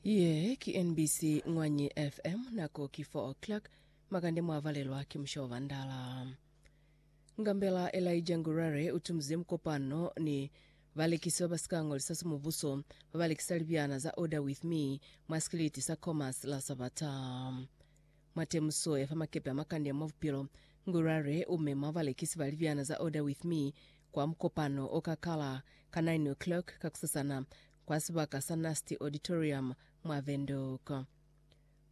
Ye ki NBC Ngwanyi FM, nako ki 4 o'clock, makande mwavalelwa ki musha wa Vandala. Ngambela Elijah Ngurare utumuziye mukopano ni balekisi babasika ngolisa sa mubuso babalekisa libyana za Order With Me mwa sikiliti sa Commerce la Sabata. Mwa temuso ya fa makepe a makande mwa bupilo, Ngurare u mema balekisi ba libyana za Order With Me kwa mukopano o ka kala ka 9:00 kakusasana kwa sibaka sa Nasty Auditorium mwa Windhoek.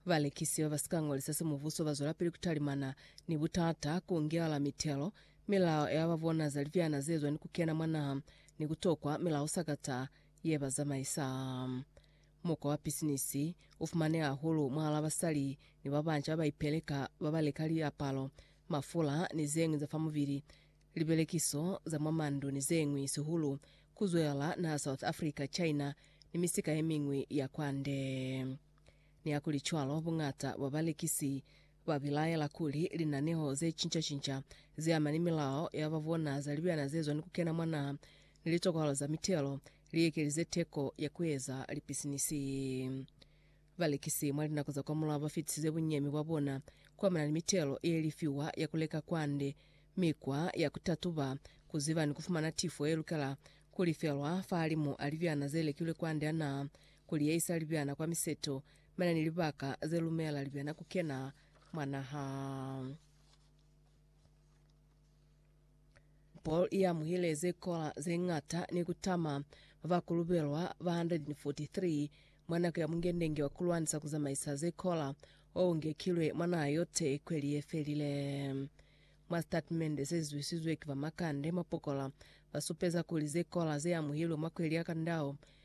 Balekisi ba ba si ka ngolisa semubuso ba zwelapili ku talimana ni butata, ku ngelala mitelo, milao ya ba bona za libyana ze zwa ni ku kena mwa naha, ni ku tokwa milao sakata ye ba zamaisa. Mukwa wa pisinisi u fumaneha hahulu mwahal'a basali ni babanca ba ba ipeleka ba ba leka liapalo, mafula ni ze ñwi za fa mubili, libelekiso za mwa mandu ni ze ñwi, sihulu ku zwelela naha South Africa, China ni misika ye miñwi ya kwande. Nihakulicwalo, buñata bwa balekisi Ba bilaela kuli linaneho ze cinca-cinca ze ama ni milao ya ba bona za libyana ze zwa ni ku kena mwa naha ni litokwalo za mitelo li ekelize teko ya ku eza lipisinisi. Balekisi mwa linako za kwamulaho ba fitisize bunyemi bwa bona ku amana ni mitelo ye lifiwa ya ku leka kwande, mikwa ya ku tatuba, ku ziba ni ku fumana tifo ye lukela ku lifelwa fahalimu a libyana ze lekilwe kwande a naha, ku liyeyisa libyana kwa miseto Bana ni libaka ze lumela libyana ku kena mwa naha. Paul i amuhile ze kola ze ñata ni ku tama mwa ba kulubelwa ba 143 mwa nako ya mungendenge wa ku lwanisa ku zamaisa ze kola o ngekilwe mwa naha yote kweli ye felile. Mwa sitatimende se zwisizwe ki ba Makande mwa pokola, ba supeza kuli ze kola ze amuhilwe mwa kweli ya Kandao